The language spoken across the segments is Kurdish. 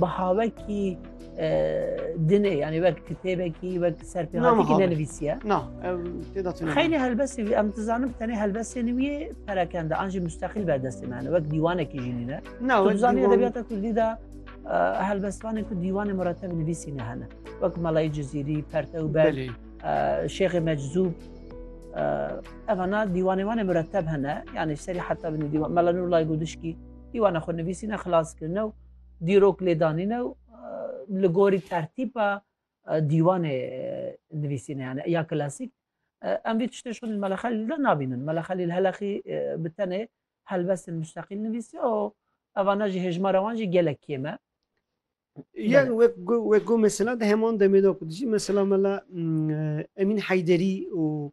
Bihavekî dinê yanî wek kitêbekî wek serpêhatîkî nenivîsiye Na xeylê helbesê wî em dizanim tenê helbesê niviyê perekende an jî mustexîl berdestê me wek dîwanekî jî nîne Na zanî edebiyata kurdî de helbestvanê ku dîwanê muretev nivîsî ne hene wek melayî cizîrî pertew ber şêxê meczûb evana dîwanê wanê mureteb hene yanî serî heta binî dîwan melanûr lay gudişkî Dîwana xwenivîsîne xilaskirine û dîrok lêdanîne û li gorî tertîpa dîwanê nivîsîne yani ya klasîk em vî tiştê şonî meleqelî de nabînin meleqelî heleqî bi tenê helbestên mustaqîl nivîsî û evana jî hêjmara wan jî gelek kêm e Yan wek wek mesela de heman demê de ku dijî mesela mela Emîn Heyderî û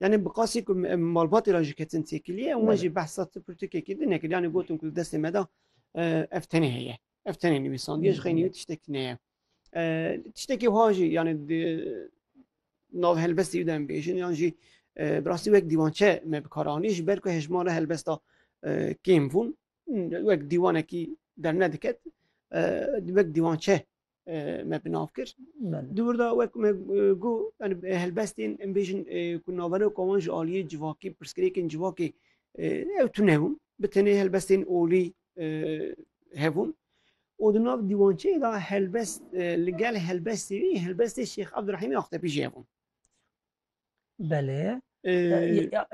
Yanî bi qasî ku em malbatê re jî ketin têkiliyê û min jî behsa ti pirtûkekê din nekir. Yanî gotin ku li destê me de ev tenê heye. Ev tenê nivîsandiye ji xeynî wî tiştek ne ye. Tiştekê wiha jî yanî nav helbestê wî de em bêjin yan jî bi rastî wek dîwançe me bi kar anî ji ber ku hejmar re helbesta kêm bûn wek dîwanekî dernediket wek dîwançe me bi nav kir. Di wir de wek me got yani helbestên em bêjin ku navbera ku wan ji aliyê civakî pirsgirêkên civakê ew tune bûn. Bi tenê helbestên olî hebûn. û di nav dîwançeyê de helbest li gel helbestê wî helbestê Şêx Ebdurehîmê Axtepî jî hebûn. Belê.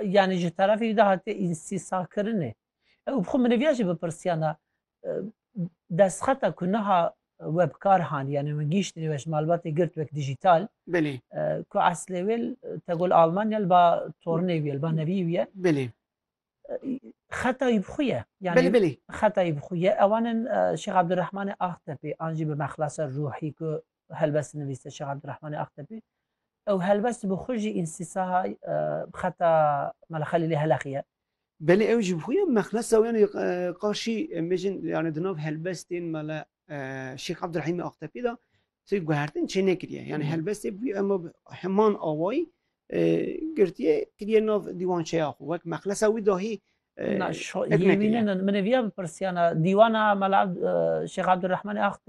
Yani ji terefê de hatê însîsakirinê. Ew bi xwe min eviya jî bipirsiyana destxeta ku niha we bi kar han yani min gîştinê we ji malbatê girt wek dijîtal Belê. ku eslê wê tegul Almanya li ba tornê wî ye li ba nevî wî ye. Belê. xetayî bi xwe ye Belê belê. xetayî bi xwe ye ewan in Şêx Abdurrahmanê Axtepî an jî bi mexlasa ruhî ku helbest nivîse Şêx Abdurrahmanê Axtepî ew helbest bi xwe jî înstisaha xeta Mela Xelîlê Heleqî ye. Belê ew jî bi xwe ye mexlasa û yanê qaşî em bêjin yanê di nav helbestên Mela Şêx Abdurrahîmê Axtepî de Sê guhertin çê nekiriye. Yani helbestê bûye em heman awayî girtiye kiriye nav dîwançeya xwe wek mexlesa wî dahî Yêwînin min ê viya bipirsiyana dîwana Mela Şêx Abdurrahmanê Axt